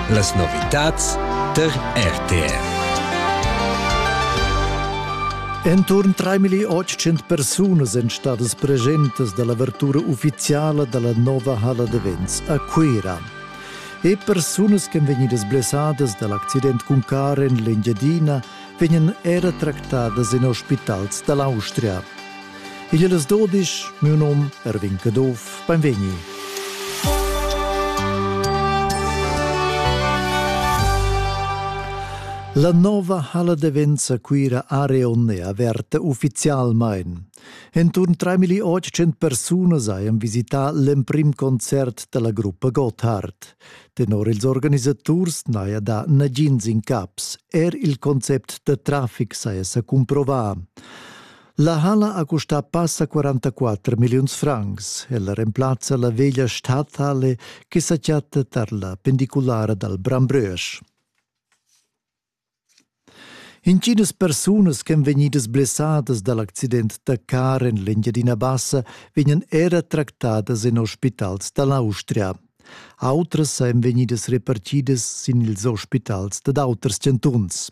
Las novitads tar RTR. Enturn 3800 persunas èn stadas presentas da l'avertura uffiziala da la nova halla d'events a Cuira. E persunas che vegnidas blessadas da l'accident cun carro en l'Engiadina vegnan era tractadas en ospitals da l'Austria. Igl es dodisch, miu nom Erwin Caduff, benvegni. La nova halla de Venza Cuira Areon è averta ufficialmain. Intorno 3800 persone haben visità l'emprim concert della gruppa Gotthard. Tenor ils organisators n'haja da nagins in caps. Er il concept da traffic saja sa cumprovà. La hala ha custà passa 44 milliuns francs. Ella remplazza la veglia stadthalle che sa chatta tar la pendiculara dal Brambrösch. Intginas persunas ch'èn vegnidas blessadas dal accident da car en l'Engiadina Bassa vegnan era tractadas en ospitals da l'Austria. Autras ein vegnidas repartidas sin ils ospitals dad auters chantuns.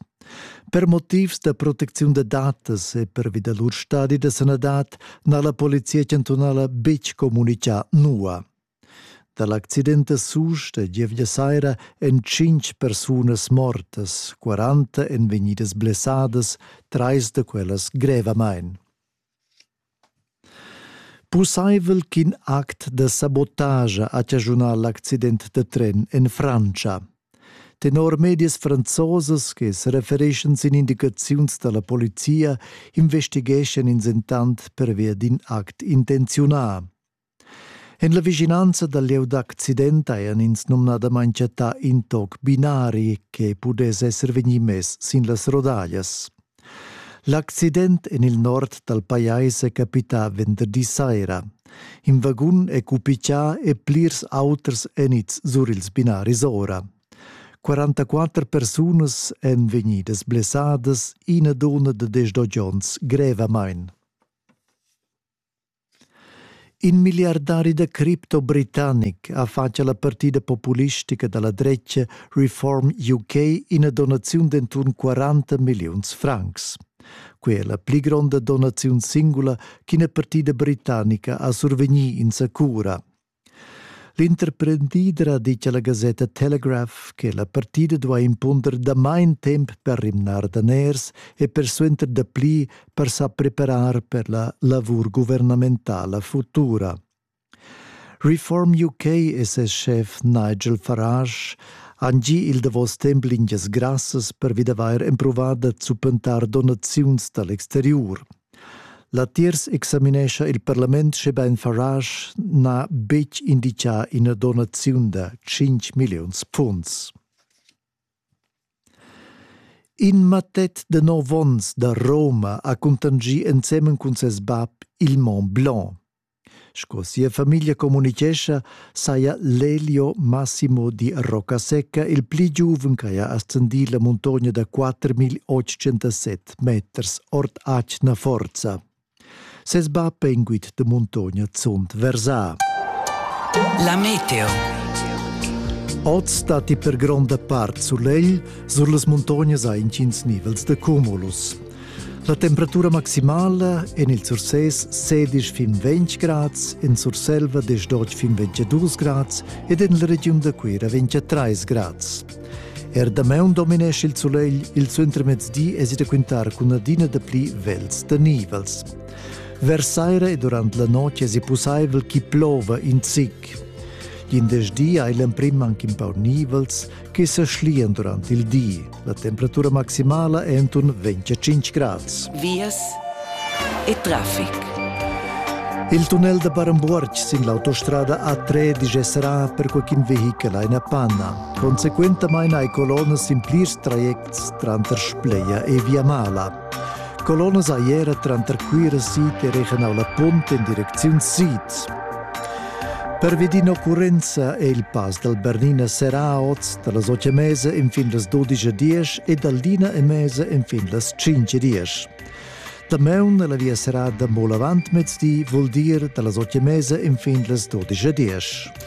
Per motivs da protecziun da datas e pervi da lur stadi da sanadad n'ha la polizia chantunala betg communitgà nua. Da l'accident a Susch da gievgia saira èn tschintg persunas mortas, 40 èn vegnidas blessadas, trais da quellas grevamain. Pussaivel ch'in act da sabotagia ha chaschunà l'accident da tren en Frantscha. Tenor medias franzosas che serefereschan sin indicaziuns da la polizia investigeschan ins entant pervia d'in act intenziunà. En la vischinanza dal lieu d'accident hajan ins numnadamain chattà in toc binari che pudess esser vegnì mess sin las rodaglias. L'accident en il nord dal pajais è capità venderdi saira. In vagun è cupichà e plirs auters èn ids sur ils binaris ora. 44 persunas èn vegnidas blessadas, ina dunna da 18 onns grevamain. In milliardari da cripto britannic ha fatg alla partida populistica dalla dretga Reform UK ina donaziun d'enturn 40 milliuns francs. Quei è la pli gronda donaziun singula ch'ina partida britannica ha survegni in sa cura. L'interprendidra di alla gasetta Telegraph che la partida duai impunder damain temp per rimnar daners e persuenter dapli per sa preparar per la lavur guvernamentala futura. Reform UK e ses schef Nigel Farage han gi il davos temp lingias grassas per vid avair empruvà da zuppentar donaziuns dal exteriur. Latiers examinescha il parlament schebein Farage n'ha betg indicà ina donaziun da tschintg milliuns funs. In mattet de nov onns da Roma ha cuntanschì ensemen cun ses bab il Mont Blanc. Sco sia famiglia communitgescha, saja Lelio Massimo di Roccasecca il pli giuven che ha ascendì la muntogna da 4807 meters ord atgna forza. Ses bab è inguit de muntogna zunt versà. La meteo. Oz stati per gronda part sulegl, sur las muntognas ha intgins nivels de cumulus. La temperatura maximala en il Sursés sedisch fin 20 grads, en Surselva 18 fin 22 grads ed en la regiun da Cuira 23 grads. Er damaun dominesce il sulegl, il suentermezdi es da quintar cun adina dapli vels da nivels. Vers saira e durant la notg es pussaivel chi plova in zic. L'indesch di hai l'emprim anche un po' nivels che sa schlian durant il di. La temperatura maximala è intorno 25 grads. Vias e traffic. Il tunnel da Barambuorg sin l'autostrada A13 sarà per qualcun vehichel eine Panna. Consequentamain hai colonnas in plirs trajects tranter Spleia e Viamala. Colonnas ei era tranter Cuira sid e regionala Punt in direcziun sid. Pervi d'in'occurrenza è il pass dal Bernina serrà oz da las 8 e mesa fin las 12 e 10 e dal Lina e mesa fin las 5 e 10. Damaun la via serrada molavant mezdi vul dir da las 8 e mesa fin las 12 e 10.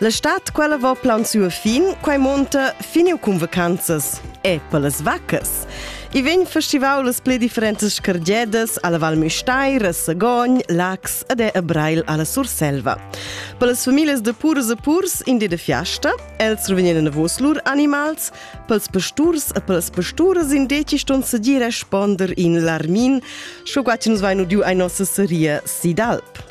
La stad quella va plansur fin, quai monta finiu cun vacanzas e per las vaccas. I vegn festival las pli differentas cargedas alla Val Müstair, a Sagogn, Lax ed è a Brail alla Surselva. Per las famiglie de purs e purs in di de fiasta, els revenien navos lur animals, per els pasturs e per les pasturas in deci ston sedir e sponder in l'armin, sco qua ci nos vainu diu ai nossa seria Sidalp.